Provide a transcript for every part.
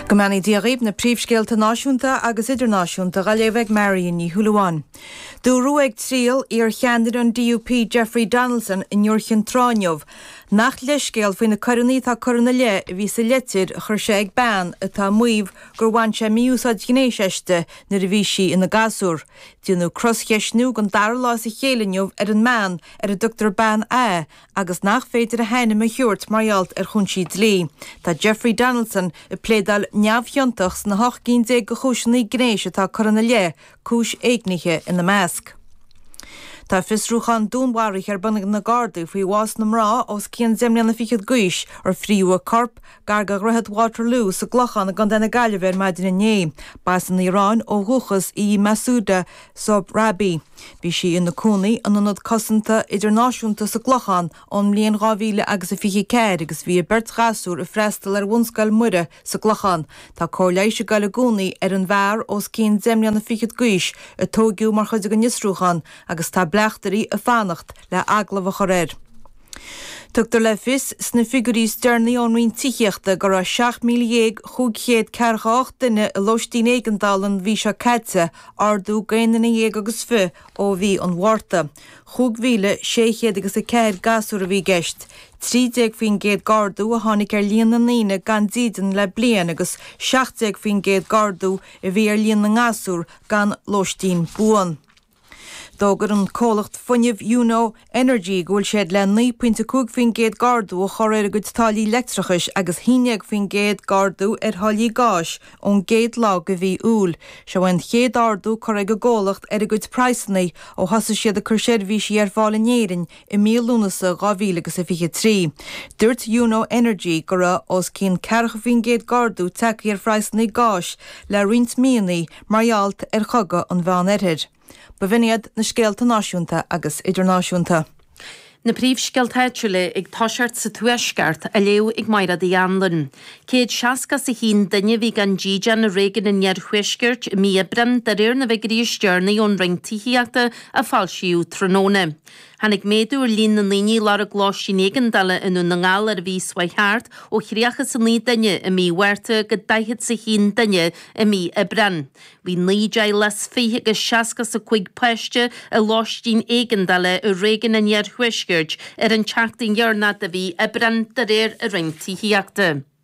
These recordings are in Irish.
Go mbeannaí Dia dhaoibh na príomhscéalta náisiúnta agus idirnáisiúnta dha léamh ag Marion Ní Shúilleabháin. Dúradh ag triail iar cheannaire an DUP Jeffrey Donaldson in Iúr Chinn Trá inniu nach leithscéal faoi na coireanna atá curtha ina leith a bhí sa leitir a chuir sé ag bean atá ag maíomh gur bhain sé mí-úsáid ghnéis aisti nuair a bhí sí ina gasúr. Déanadh cros-cheistniú den dara lá as a chéile inniu ar an mbean ar a dtugtar Bean A agus nach féidir a hainm a thabhairt mar gheall ar chúinsí dlí, tá Jeffrey Donaldson ag pléadáil neamhchiontach sna hocht gcinn déag de chúiseanna gnéis atá curtha ina leith, cúis éignithe ina measc. Tá fiosrúchán dúnmharaithe ar bun ag na Gardaí faoi bhás na mná os cionn deich mbliana fichead d'aois ar frítheadh a corp gar de Dhroichead Waterloo sa gClochán i gContae na Gaillimhe ar maidin inné. B'as an Iaráin ó dhúchas í Mahsouda Sohrabi. Bhí sí ina cónaí in ionad cosanta idirnáisiúnta sa gClochán ón mbliain 2000 agus a 24 agus bhí a beirt ghasúr ag freastal ar Bhunscoil Muire sa gClochán. Tá cóir leighis ag goil i gcónaí ar an bhfear os cionn deich mbliana fichead d'aois a tóigeadh mar chuid den fhiosrúchán agus tá bleachtairí ag fanacht le agallamh a chur air. Tugtar le fios sna figiúirí is deireanaí ón Roinn Tithíochta go raibh 17,548 duine i lóistín éigeandála an mhí seo caite, ardú d'aon duine dhéag agus fiche ó mhí an Mhárta. 5,600 agus 4 gasúr a bhí i gceist. 13% d'ardú a tháinig ar líon na ndaoine gan dídean le bliain agus 17% d'ardú a bhí ar líon na ngasúr gan lóistín buan. D'fhógair an comhlacht fuinnimh Yuno Energy go bhfuil siad le naoi pointe a cúig faoin gcéad d'ardú a chur ar a gcuid táillí leictreachais agus haon déag faoin gcéad d'ardú ar tháillí gáis ón gcéad lá de mhí Iúil. Seo é an chéad ardú curtha ag an gcomhlacht ar a gcuid praghsanna ó thosaigh siad ag cur seirbhísí ar fáil in Éirinn i mí Lúnasa 2023. Dúirt Yuno Energy go raibh os cionn 40% d'ardú tagtha ar phraghsanna gáis le roinnt míonna mar gheall ar chogadh an Mheán Oirthir. B'in iad na scéalta náisiúnta agus idirnáisiúnta. Na príomhscéalta áitiúla ag toiseacht sa Tuaisceart, á léamh ag Mairéad Uí Annluain. Céad seasca is a haon duine a bhí gan dídean i réigiún an iarthuaiscirt i mí Aibreáin, de réir na bhfigiuirí is deireanaí ón Roinn Tithíochta a foilsíodh tráthnóna. Tháinig méadú ar líon na ndaoine a lorg lóistín éigeandála i nDún na nGall ar an mhí seo thart, ó thríocha is a naoi duine i mí Mhárta go daichead is a haon duine i mí Aibreán. Bhí naoi dteaghlach is fiche agus seasca is a cúig páiste i lóistín éigeandála i réigiún an iarthuaiscirt ar an tseachtain dheireanach de mhí Aibreán, de réir an Roinn Tithíochta.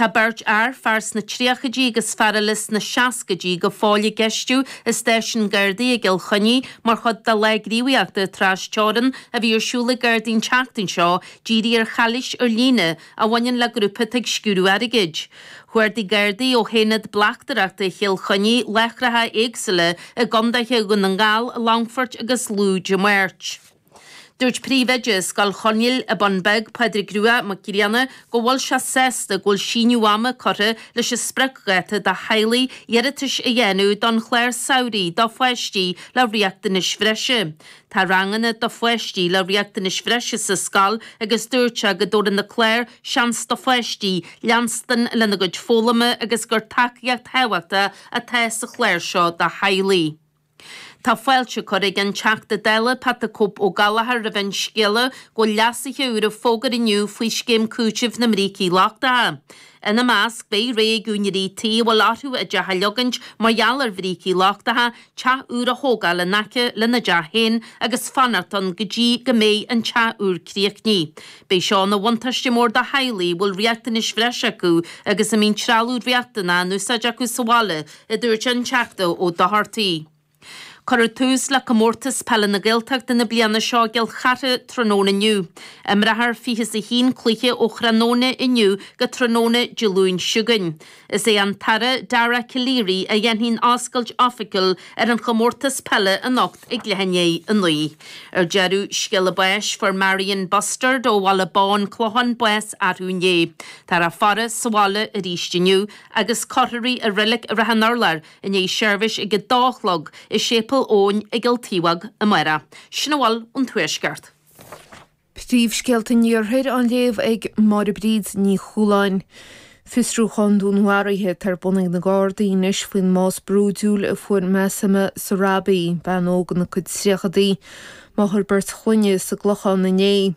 Tá beirt fhear, fear sna tríochaidí agus fear eile sna seascaidí, go fóill á gceistiú i stáisiún Gardaí i gCill Chainnigh mar chuid de lá gníomhaíochta tras-teorann a bhí ar siúl ag Gardaí an tseachtain seo dírithe ar chalaois ar líne a bhaineann le grúpa atá ag sciúradh airgid. Chuardaigh Gardaí ó Aonad Bleachtaireachta Chill Chainnigh láithreacha éagsúla i gcondaetha Dhún na nGall, Longfoirt agus Lú Dé Máirt. Dúirt príomhoide Scoil Chonaill ar an Bhun Bheag, Pádraig Rua Mac Grianna, go bhfuil sé sásta go bhfuil síneadh ama curtha leis an spriocdháta do theaghlaigh iarratais a dhéanamh don chlár samhraidh do pháistí le riachtanais bhreise. Tá ranganna do pháistí le riachtanais bhreise sa scoil agus dúirt sé go dtabharann na cláir seans do pháistí leanstan ar aghaidh lena gcuid foghlama agus gur tacaíocht thábhachtach atá sa chlár seo do theaghlaigh. Tá fáilte curtha ag an Teachta Dála Pat the Cope O'Gallagher roimh an scéala go bhfuil leasuithe úr á bhfógairt inniu faoi Scéim Cúitimh na mBrící Lochtacha. Ina measc, beidh rogha ag úinéirí tí a bhfuil orthu a dteach a leagaint mar gheall ar bhrící lochtacha, teach úr a thógáil in aice lena dteach féin agus fanacht ann go dtí go mbeidh an teach úr críochnaithe. Beidh seo ina bhuntáiste mór do theaghlaigh a bhfuil riachtanais bhreise acu agus a mbíonn trealamh riachtanach in úsáid acu sa bhaile a dúirt an Teachta Ó Dochartaigh. Cuireadh tús le Comórtas Peile na Gaeltachta na bliana seo i gCill Chartha tráthnóna inniu. Imreofar fiche is a haon cluiche ó thráthnóna inniu go tráthnóna Dé Luain chugainn. Is é an tAire Dara Calleary a dhéanfaidh an oscailt oifigiúil ar an chomórtas peile anocht i gCloich An Éi. Ar deireadh, scéala báis, fuair Marion Bustard ó Bhaile Bán Clochán bás arú inné. Tá a faire sa bhaile arís inniu. agus cuirfear í i reilic i Rath an Urláir i ndiaidh seirbhís ag a dó a chlog i Séipéal Eoin i gCill Taobhágh amárach. Sin a bhfuil ón Tuaisceart. Príomhscéalta an Iarthair á léamh ag Máire Bríd Ní Chualáin. Fiosrúchán dúnmharaithe atá ar bun ag na Gardaí anois faoin mbás brúidiúil a fuair Masoumeh Sohrabi, bean óg ina cuid tríochaidí, máthair beirt chlainne, sa gClochán inné.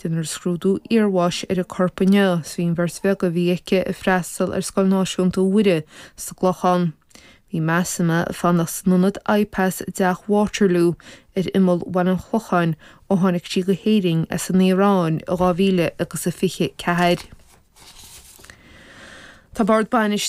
Déanfar scrúdú iarbháis ar a corp inniu, is bhíonn an bheirt bheaga a bhí aici ag freastal ar Scoil Náisiúnta Mhuire sa gClochán. Bhí Masoumeh ag fanacht san ionad I-pass i dteach Waterloo ar imeall Bhaile an Chlocháin ó tháinig sí go hÉirinn as an Iaráin i 2024. Tá Bord Bainistíochta.